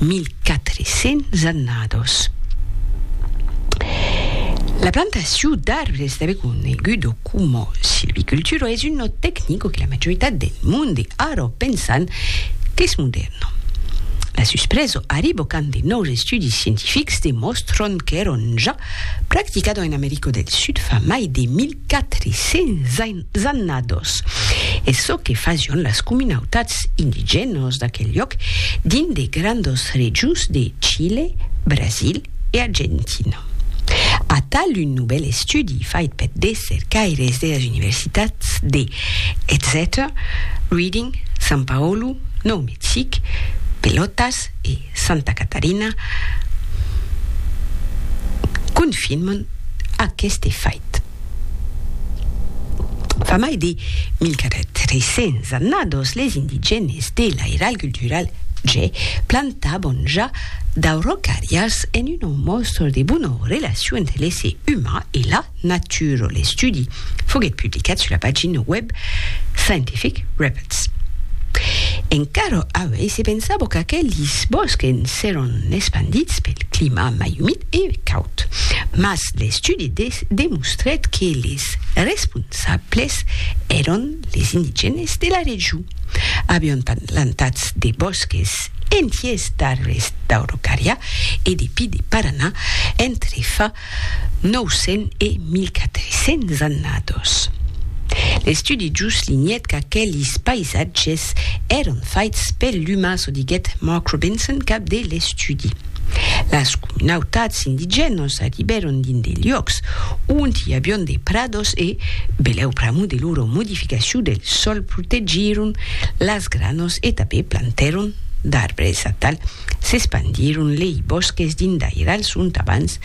1400 annados. La plantacion d'arbres tanben conegudo coma silvicultura es una tecnico que la majoritat del monde ara pensan qu'es modèrna. La suspresa arriba quand de nòus estudis scientifics demòstran qu'èran ja practicada en America del Sud fa mai de 1000 400 annados, e çò que fasión las comunautats indigènos d'aquel lloc dins de grandos rejos de Chile, Brasil e Argentina. Atal un novèl estudi fait peth de cercaires deras universitats de Exeter, Reading, San Paolo, Nòu Mexic, Pelotas e. Santa Catarina confirman aqueste fait. Fa mai de 1.300 annados les indigènes de l'Airal Cultural Ge plantavan ja d'aurocarrias en un òmòstor de bona relacion entre l'èsser uman e la Nature, l'estudi foguèt publicat sus la pagina web Scientific Reports. Encara avui se pensava qu'aquelis bòsques seràn espandits pel clima mai umid e caud, mas l'estudi demostrèt que les responsables èran les indigènes de la region. Avián plantats de bòsques entiers d'arbres d'Aurocària e de pi de Paranà entre fa 900 e 1400 annados. L'estudi juslinhèt qu'aquelis païsatges èran faits per l'umà, çò diguèt Mark Robinson, cap de l'estudi. Las comunautats indigènas arribèron dins de luòcs ont i avián de prados e, belèu pr'amor de lora modificacion del sòl, protegieron las granas e tanben plantèron d'arbres atal s'espandiron lei bòsques dins d'airals ont abans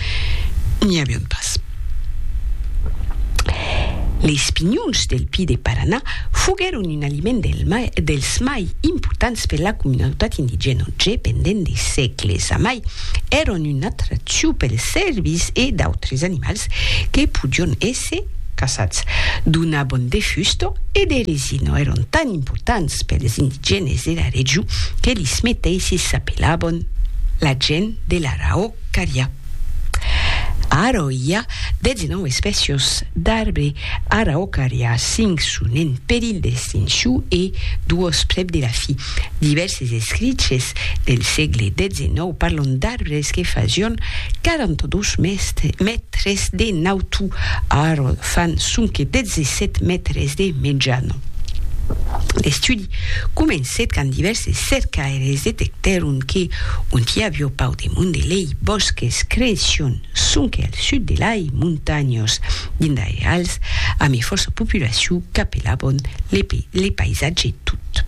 n'i avián pas. Leis pinhons del Pi de Paranà foguèron un aliment dels mai importants per la comunautat indigèna òtge pendent de sègles. Amai, èran una atraccion pels cèrvis e d'autres animals que podián Se caçats donabon de fusto e de resino èron tan importants pels indigènes de la region que lis meteisses s'apelabon la gent de l'Araocaria. Ara i a 19 espècios d'arbre Araocaria, 5 son en perilh d'extincion e 2 prèp de la fin. Divèrses escriches del sègle XIX parlon d'arbres que fasión 42 mètres de nautu, ara fan sonque 17 mètres de mejana. L'estudi comencèt quand divèrses cercaires detectèron que, ont i avió pauc de monde lei bòsques creission sonque al sud de lai montanhós. Dindai als ami fòrça populaciu qu'apelabon le paisatge tot.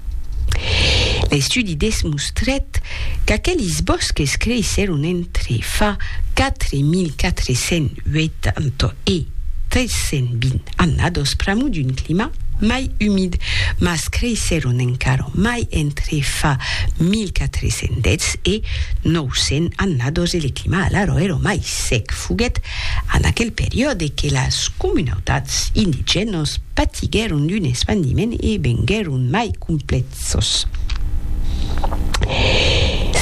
L'estudi desmostrèt qu'aquelis bòsques creissèron entre fa 4.480 e 320 annadós pr'amor d'un clima mai umid, mas creissèron encara mai entre fa 1.410 e 900 annadós e le clima alara èra mai sec foguèt en aquel periòde que las comunautats indigènos patiguèron d'un espandiment e venguèron mai complèxos.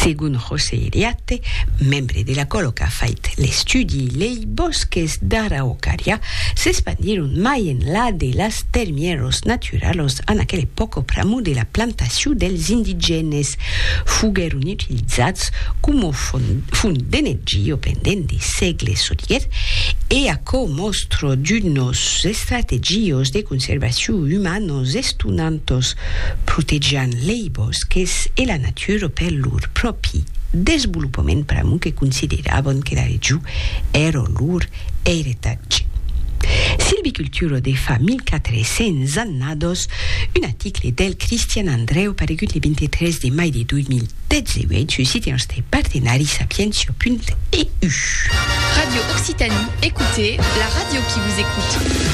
Segon José Iriarte, membre de la còlo qu'a fait l'estudi, lei bòsques d'Araucària s'espandieron mai enlà de las termièros naturalos en aquel epòca pr'amor de la plantacion dels indigènes. Foguèron utilizats coma font d'energia pendent de sègles soliguèt e aquò mòstra d'unos estrategios de conservacion umanos estonantos, protegián lei bòsques e la natura per lor pròpi desvolopament pr'amor que consideràvan que la region èra lor Heritage. Silviculturo de fa 1400 annados, un aticle del Cristian Andreu paregut le 23 de mai de 2018 sus site nòste partenari sapientia.eu. Radio Occitanie, écoutez la radio qui vous écoute.